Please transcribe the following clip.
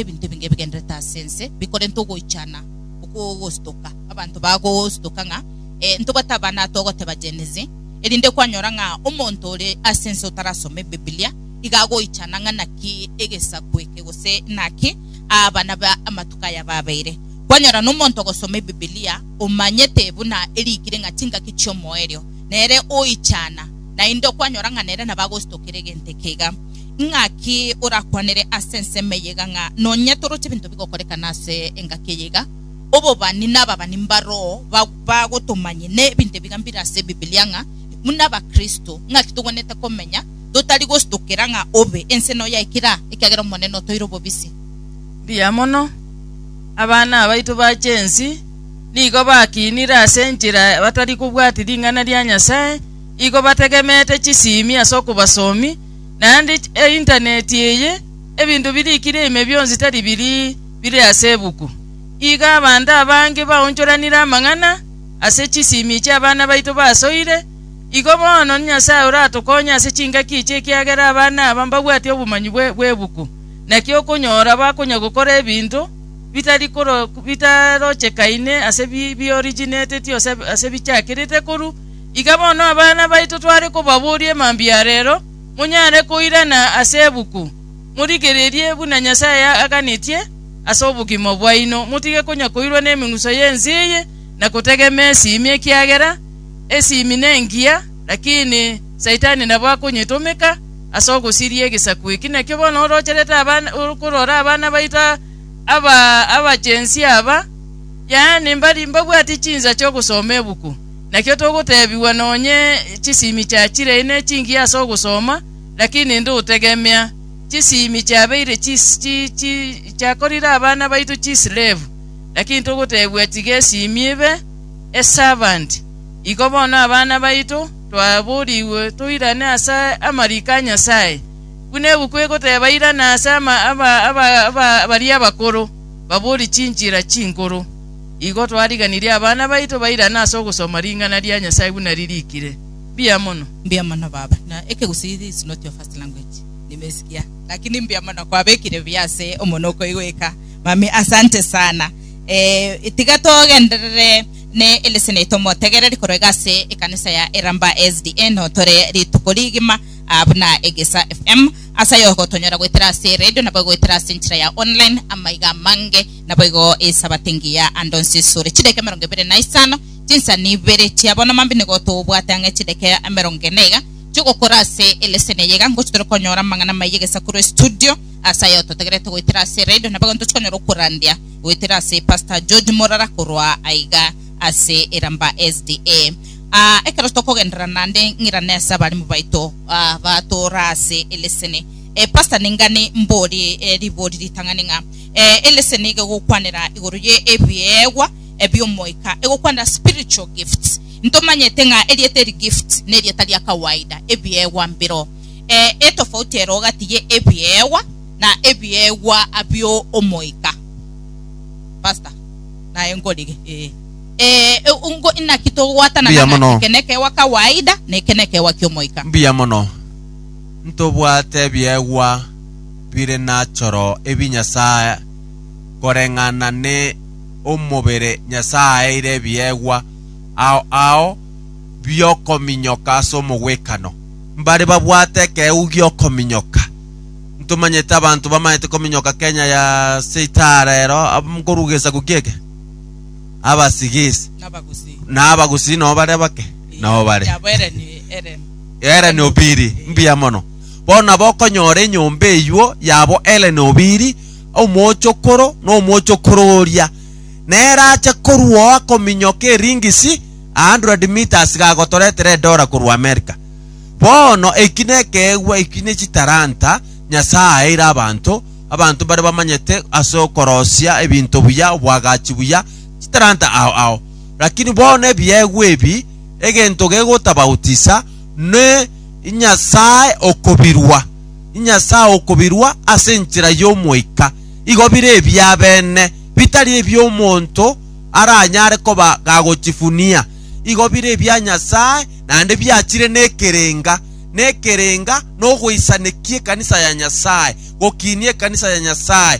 ebinto ebinge ebigendererete ase ense bikorenta ogoichana okwo ogosutoka. Abanto bagosutoka ng'a eh, ntobwate abana togoteba Gen Z, erinde kwanyora ng'a omonto ore ase ense otarasoma Ebibilia iga agoichana ng'a naki egesaku eke gose naki abana ba amatuko aya babeire. Kwanyora nomonto ogosoma Ebibilia omanyete buna erikire ng'a chingaki chi'omoerio nere oichana, naende okwanyora ng'a nere nabo agosutokera egento eke iga. Ng'aki orakwanere ase ensemo eye iga ng'a nonya toroche ebinto bigokorekana ase engaki eye iga? Obobani na ababani ba roho bagotomanye nebinto ebiga mbire ase Ebibilia ng'a buna Abakristo ng'aki togwenerete komenya totari gositokera ng'a obe ense noyo yaikire aa ekiagera Omonene otoire obobisi. Mbuya mono. Abana abaito bachia ensi nigo bakinire ase enchera batari kobwati ring'ana ria Nyasae, igo bategemete chisimi ase okobasomi, Naende Interneti eye, ebinto birikire ime bionsi tari biri bire ase ebuku. Iga abanto abange baonchoranire amang'ana ase chisimi chi'abana baito basoire. Igo bono Nyasae oratokonye ase chingaki echi ekiagera abana aba mbabwati obomanyi bw'ebuku. Naki okonyora bakonya gokora ebinto bitarochekaine ase biorigineteti ase bichakirite korwa Iga bono abana baito tware kobaboria emambia a reero, monyare koirana ase ebuku, morigererie buna Nyasae aganetie ase obogima bwaino, motige konya koirwa nemeng'uso y'ense eye, na gotegema esimi, ekiagera esimi nengiya, lakini Saitani nabo akonyetomeka ase ogosiria egesaku eki. Naki bono orocherete abana, okorora abana baito aba abachensi aba, yaani mbari mbabwati chinsa chi'ogosoma ebuku. Nakio togoteebigwa nonye chisimi chiachirei ne chingiya ase ogosoma, lakini inde otegemea chisimi chiabeire chiakorire abana baito chisilevu. Lakini togoteebigwa tiga esimi ebe esavanti. Iko bono abana baito twaborigwe toirane ase amariko a Nyasae, buna ebuku egoteba irana ase baria abakoro, baborie chinchera chinkoro. Igo twariganirie abana baito bairane ase ogosoma ring'ana ria Nyasae buna ririkire. Mbuya mono. Mbuya mono baba, na Ekegusii is not your first language, nimesikia, lakini mbuya mono kwabekire buya ase omonwa okoigweka, mummy asante sana eh, tiga togenderere ne eleseni yaito omotegereri korwa iga ase ekanisa ya Iramba SDA notore rituko rigima ah, buna Egesa FM, ase ayo ogotonyora goetera ase eredio nabo egoetera ase enchera ya online amaiga amange. Naboigo Esabato engiya ande onsi esure chidakika emerongo ebere na isano, chinsani ibere chia bono mambia nigo togobwate ang'e chidakika emerongo ene iga chi'ogokora ase eleseni eye iga ngochia tore konyora amang'ana amaya egesaku rue studio ase ayao totagerete goetera ase radio nabo ekero tochikonyora okorandia goetera ase Pastor George Morara korwa aiga ase Iramba SDA. Ah, ekero tokogenderera naende ng'irane ase abarimu baito ah, batoora ase eleseni. Eh, Pastor ningani mborie eh, ribori ritang'ani ng'a Eh, elese niga egokwanera igoro ye ebiegwa ebi'omoika, egokwanera spiritual gifts. Ntomanyete ng'a erieta eri gift nerieta ria kawaida, ebiegwa mbiro. Eh, etofauti ero gati ye ebiegwa na ebiegwa abio omoika. Pastor, naye nkorige. Eh, eh, e- ungo inaki togwatana Mbuya ng'a mono. eke nekewa kawaida na eke nekewa ki'omoika. Mbuya mono. Ntobwate ebiegwa bire nachoro ebi Nyasae, koreng'ana ne omobere Nyasae aeire ebiegwa, ao ao biokominyoka ase omogwekano. Mbare babwate ekeegu giokominyoka. Ntomanyete abanto bamaete kominyoka Kenya ya seitaha rero, ab- nkorwa gesaku ki'eke, abasigisi, Nabagusi. na abagusi nao bare bake, nao bare. Yabo Ellen Ellen. Eren Obiri, mbuya mono. Bono abokonyora enyomba eyuo yabo ere nobiri, omochokoro na omochokoro oria, nere ache korwoa kominyoka eringisi a hundred metres gagotoretera edola korwa Amerika. Bono eki nekeegwa eki ne chitalanta Nyasae aeire abanto, abanto bare bamanyete ase okorosia ebinto buya, obwagachi buya, chitalanta ao ao. Lakini bono ebiegwa ebi, egento gegotabautisa, ne Inyasae okobirwa, Inyasae okobirwa ase enchera y'Omoika, igo bire ebiabene, bitari ebi'omonto aranyare koba gagochifunia. Igo bire ebia Nyasae, naende biachire nekerenga, nekerenga nogweisanekia ekanisa ya Nyasae, gokiinia ekanisa ya Nyasae,